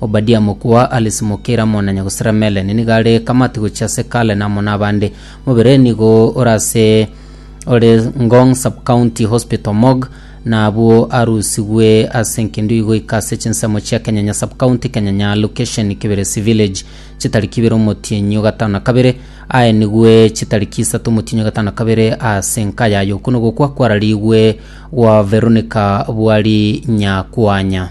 Obadia mokwe wa Alice Mokira mona nyagosera Melanie nigo are Kamati gochia ase Cullen amo nabande. Mobere nigo ore ase ore Ngong Sub-County Hospital Morgue na abwo arusigwe ase Nkindui goika ase chinsemo chia Kenyanya Sub-County Kenyanya Location Kibiresi Village chitariki ibere omotienyi o gatano na kabere aenigwe chitariki isato omotienyi o gatano na kabere ase enka yaye. Okwo nogokwa kwararigwe gwa Veronica Bwari Nyakwanya.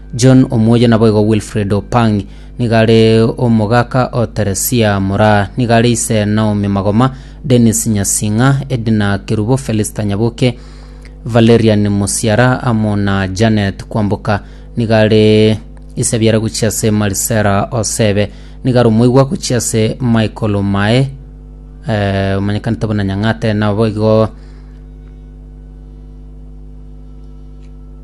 John Omuoyo naboigo Wilfred Opang nigo are omogaka o Teresia Moraa nigo are ise Naomi Magoma, Dennis Nyasing'a, Edna Kerubo, Felista Nyabuke, Valerian Musiara amo na Janet Kwamboka nigo are ise biara gochia ase Marisera Osebe nigo are omoigwa gochia ase Michael Omae eh, omanyekanete buna Nyang'ate naboigo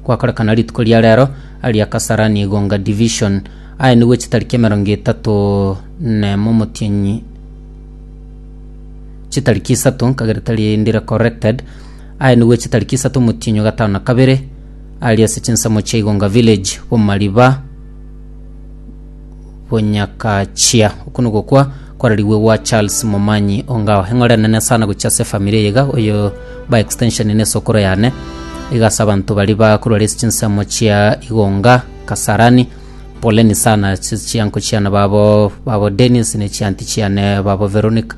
Gwakorekana rituko ria rero aria Kasarani Igonga Division, aye nigwe chitariki emerongo etato nemo omotienyi chitariki isato nkagerete rindi re corrected aye nigwe chitariki isato omotienyi gatano na kabere aria ase chinsemo chia Igonga Village bomariba bonyakachia oku nigokwa kwararigwe gwa charles momanyi ongao eng'ore nene sana gochia ase efamiri eye iga oyo by extension ne esokoro yane iga ase abanto bari bakorwa ase chinsemo chia igonga kasarani poleni sana ase chianko chiane babo babo dennis ne chianti chiane babo veronica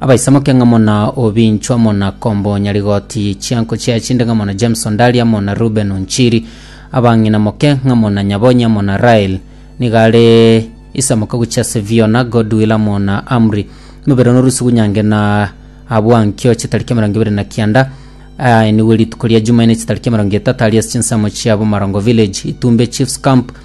Abaisamoke ng'amo na Obincho amo na Kombo Nyarigoti, Chianko chia Chinde ng'amo na James Ondari amo na Ruben Onchiri, abang'ina moke ng'amo na Nyabonyi amo na Rael, nigo are isamoka gochia ase Viona, Godwill amo na Amri. Mobere one orusigu nyange na abwo ankio chitariki emerongo ebere na kianda, aenigwe rituko ria Jumaine chitariki emerongo etato aria ase chinsemo chia Bomarongo Village, Itumbe Chiefs Camp,